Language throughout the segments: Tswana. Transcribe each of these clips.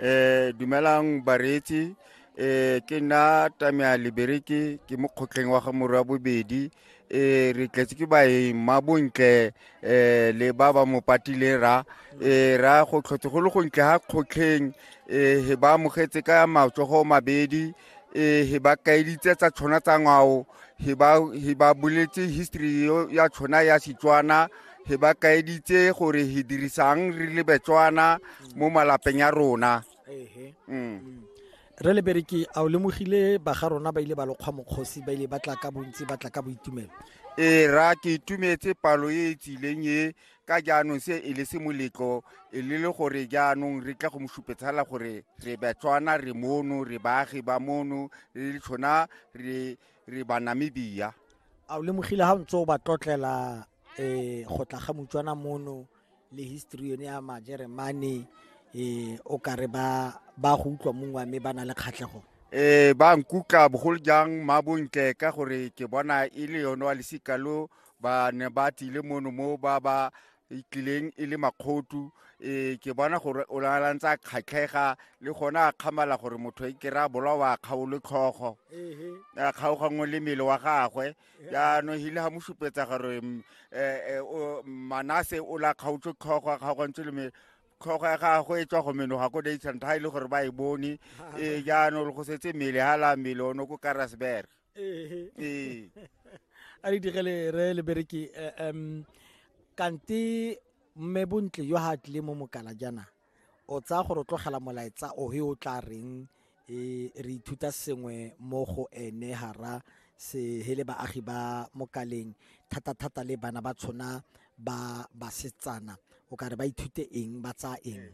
Eh, dumelang bareetsi eh, ke nna tamea libereke ke mo kgotleng wa ga morwa bobedi eh, re tletse ke baeng ma bontle eh, le ba ba mo patileng ra eh, ra go tlhotse go le gontle ga kgotlheng eh, he ba amogetse ka matsogo mabedi e he ba kaeditse tsa tshwana tsa ngwao he ba he ba boletse history yo- ya tshwana ya setswana he ba kaeditse gore he dirisang re le betswana mo malapeng ya rona mm. re le bereke a o lemogile ba ga rona ba ile ba lokgwa mokgosi ba ile ba tla ka bontsi ba tla ka boitumelo e ra ke itumetse palo e e tsileng e ka jaanong se e le se moletlo e le le gore jaanong re tla go mo supetsala gore re batswana re mono re baagi ba mono re le tshona re re banamibia a o lemogile ga o ntse o ba tlotlela um go tla ga motswana mono le history yone ya majeremane um o ka re ba ba go utlwa mongwe mme ba na le kgatlhego um ba nkutla bogolo jang mabontle ka gore ke bona e le yone wa lesika lo ba ne ba tlile mono mo ba ba tlileng e le makgotu um ke bona gore o lalantse a kgatlhega le gone a kgamala gore motho e kry-a bolawa a kgaolo tlhogo a kgaoganngwe le mmele wa gagwe jaanong hile ga mo supetsa gore um manase o la kgaotse tlhogo a kgaogantse le mmele tlhogo ya gagwe e tswa go menoga ko daysanta ga e le gore ba e bone ee jaanong go setse mmele ga la mmele o ne ko karasberg ee ee a re digele re le bereki eh, em kante mme bontle yo ha tle mo mokala jana o tsaya gore o tlogela molaetsa o he o tla reng e re ithuta sengwe mo go ene hara se hele baagi ba mokaleng thata thata le bana ba tshona ba basetsana o ka re ba ithute eng ba tsaya eng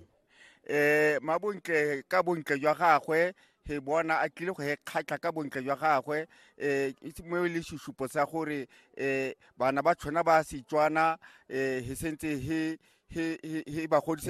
eh mabontle ka bontle jwa gagwe he bona a tlile go he kgatlha ka bontle jwa gagwe eh mo e le susupo sa gore eh bana ba tshwana ba setswana eh he sentse he he he ba godise